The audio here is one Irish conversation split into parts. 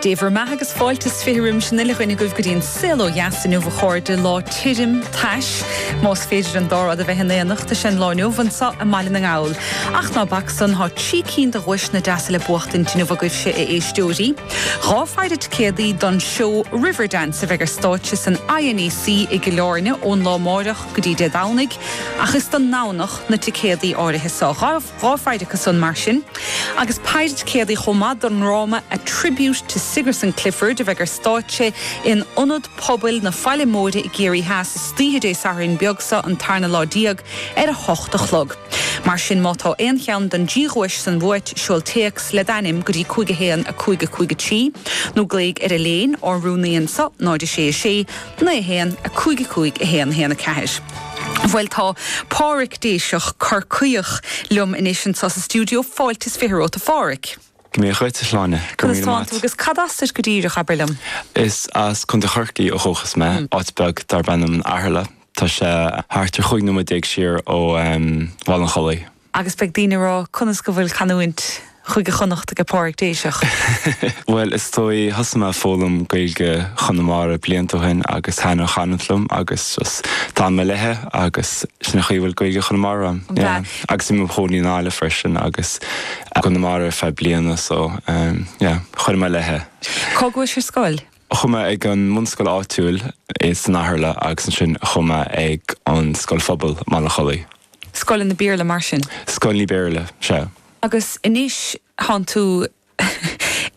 Dé bhur mbeatha agus fáilte 's fiche roimis an uile dhuine agaibh go dtí an saol ó dheas inniu a chairde, lá tirim, tais, más féidir an dá rud a bheith in éineacht, atá an lá inniu anseo i mBaile na nGall. Ach ná bac san, tá trí cinn de dhuaiseanna deasa le buachtaint inniu agaibhse a éisteoirí. Dhá phéire ticéadaí don seó Riverdance a bheidh ar stáitse san INEC i gCill Airne ón lá amáireach go dtí Dé Domhnaigh, ach is don nDomhnach na ticéadaí áirithe seo. Dhá phéire acu san mar sin, agus péire ticéadaí chomh maith don ndráma A Tribute to Sigerson Clifford a bheidh ar stáitse in Ionad Pobail na Faille Móire i gCiarraí Theas istoíche Dé Sathairn beag so an tarna lá déag ar a hocht a chlog. Mar sin má tá aon cheann don dtrí dhuais san uait seol téacs le d'ainm go dtí 5 1 5 5 3 nó glaoigh ar Eibhlín ár rúnaí anseo 0 6 6 9, 1, 5, 5, 1, 1, 4, Bhuel, tá Páraic Déiseach, Corcaíoch, liom anois anseo sa stiúideo. Fáilte is fiche romhat, a Pháraic. Dia dhuit, a Shláine. Go raibh míle maith a't. Conas atánn tú agus cad as duit go díreach, abair liom? Is as Contae Chorcaí ó dhúchas mé, áit bheag darb ainm an Eatharla. Tá sé thart ar chúig nóiméad déag siar ó Bhaile an Chollaigh. Agus beidh daoine ag rá, conas go bhfuil canúint Chúige Chonnacht aige Páraic Déiseach? Bhuel, is dóigh, thosaigh mé ag foghlaim Gaeilge Chonamara blianta ó shin agus thaithin an chanúint liom agus just d'fhan mé léithe agus sin an chaoi a bhfuil Gaeilge Chonamara agam. An Yeah. bhfeadh. Agus bhí mé i mo chónaí in Árainn freisin agus i gConamara ar feadh bliana so, yeah, chuir mé léithe. Cá chuais ar scoil? Chuaigh mé ag an mbunscoil áitiúil san Eatharla agus ansin chuaigh mé ag an scoil phobail i mBaile an Chollaigh. Scoileanna Béarla mar sin? Scoileanna Béarla, sea. Agus anois tánn tú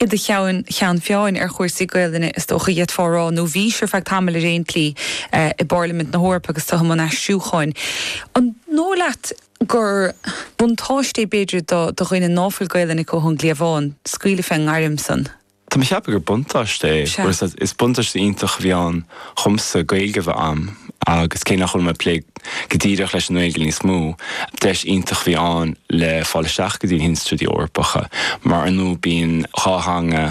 i do cheann ceann feadhna ar chúrsaí Gaolainne, is dócha, d'fhéadfá a rá, nó bhís ar feadh tamaill ar aon tslí i bPairlimint na hEorpa agus tú i mbun aistriúcháin. An dóigh leat gur buntáiste é b'fhéidir do dhaoine ná fuil Gaolainne acu ón gcliabhán, scaoileadh fé ngairm san? Tá mé ag ceapadh gur buntáiste é. Sea. Bhuel, is buntáiste iontach a bhí ann dhomsa Gaeilge a bheith agam agus cé nach bhfuil mé ag plé go díreach leis an nGaeilge níos mó, deis iontach a bhí ann le fáil isteach go dtí na hinstitiúidí Eorpacha mar ar ndóigh bíonn dhá theanga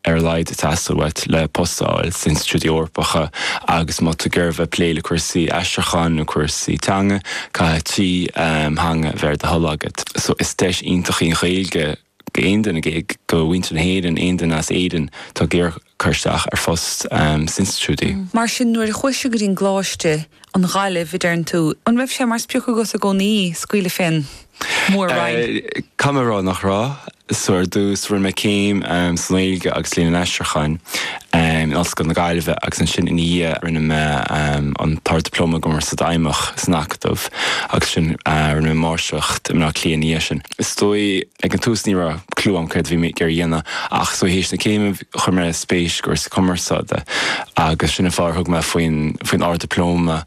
ar a laghad ag teastáil uait le post a fháil sna hinstitiúidí Eorpacha agus má tá tú ag iarraidh a bheith ag plé le cúrsaí aistriúcháin nó cúrsaí teanga, caithfidh trí theanga a bheith ar do thoil agat. So, is deis iontach í an Ghaeilge. d'aon duine de mhuintir na hÉireann, aon duine as Éirinn, atá ag iarraidh cur isteach ar phost sna hinstitiúidí. Mar sin, nuair a chuais go dtí an gColáiste, an Ghaillimh, a deireann tú, an raibh sé mar sprioc agat i gcónaí scaoileadh fén Mhór-Roinn? Caithfidh mé a rá nach raibh. So ar dtús, rinne mé céim sa nGaeilge agus Léann an Aistriúcháin in Ollscoil na Gaillimhe agus ansin ina dhiaidh rinne mé an tArd-Dioplóma sa gCumarsáid Fheidhmeach san Acadamh agus ansin rinne mé Máistreacht i mBleá Cliath ina dhiaidh sin. is dóigh, ag an tús ní raibh clue agam céard a bhí mé ag iarraidh a dhéanamh ach is dóigh théis na céime chuir mé spéis i gcúrsaí cumarsáide agus sin an fáth ar thug mé faoin faoin Ard-Dioplóma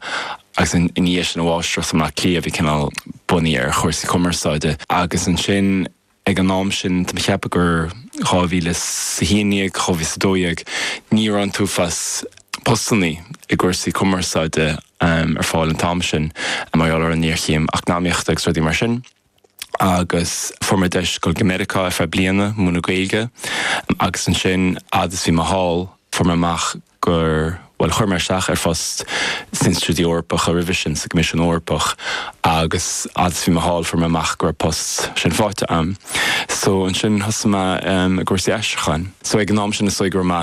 agus i ndiaidh sin an mháistreacht i mBleá Cliath a bhí cineál bunaithe ar chúrsaí cumarsáide agus ansin ag an am sin tá mé ag ceapadh gur dhá mhíle is a haon dhéag, dhá mhíle is a dó dhéag, ní raibh an t-uafás postannaí i gcúrsaí cumarsáide ar fáil an t-am sin mar gheall ar an ngéarchéim eacnamaíochta agus rudaí mar sin. agus fuair mé deis dul go Meiriceá ar feadh bliana, ag múineadh Gaeilge, agus ansin, fhad is bhí mé thall, fuair mé amach gur, bhuel, chuir mé isteach ar phost sna Institiúidí Eorpacha roimhe sin, sa gCoimisiún Eorpach, agus fhad is bhí mé thall, fuair mé amach go raibh an post sin faighte agam. So, ansin, thosaigh mé i gcúrsaí aistriúcháin. So, ag an am sin, is dóigh go raibh mé.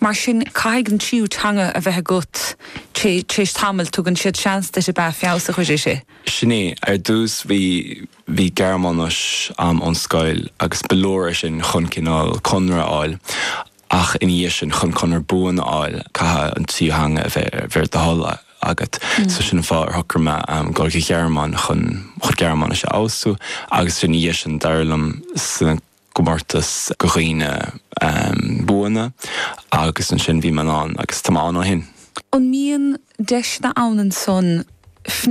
Mar sin, caithfidh an tríú teanga a bheith agat tar éis tamaill, tugann siad seans duit ab ea? Feabhas a chur uirthi, sea. Sin é. Ar dtús bhí, bhí Gearmáinis a'm ón scoil agus ba leor é sin chun cineál conradh a fháil ach ina dhiaidh sin, chun conradh buan a fháil, caithfidh an tríú theanga a bheith ar do thoil agat. So sin an fáth ar shocraigh mé a ghoil go Gearmáin chun, chun Gearmáinis a fheabhsú agus ina dhiaidh sin, d'éirigh liom sa, gcomórtas do dhaoine buana agus ansin bhí mé buan ann agus tá mé ann ó shin. An mbíonn deiseanna ann ansan?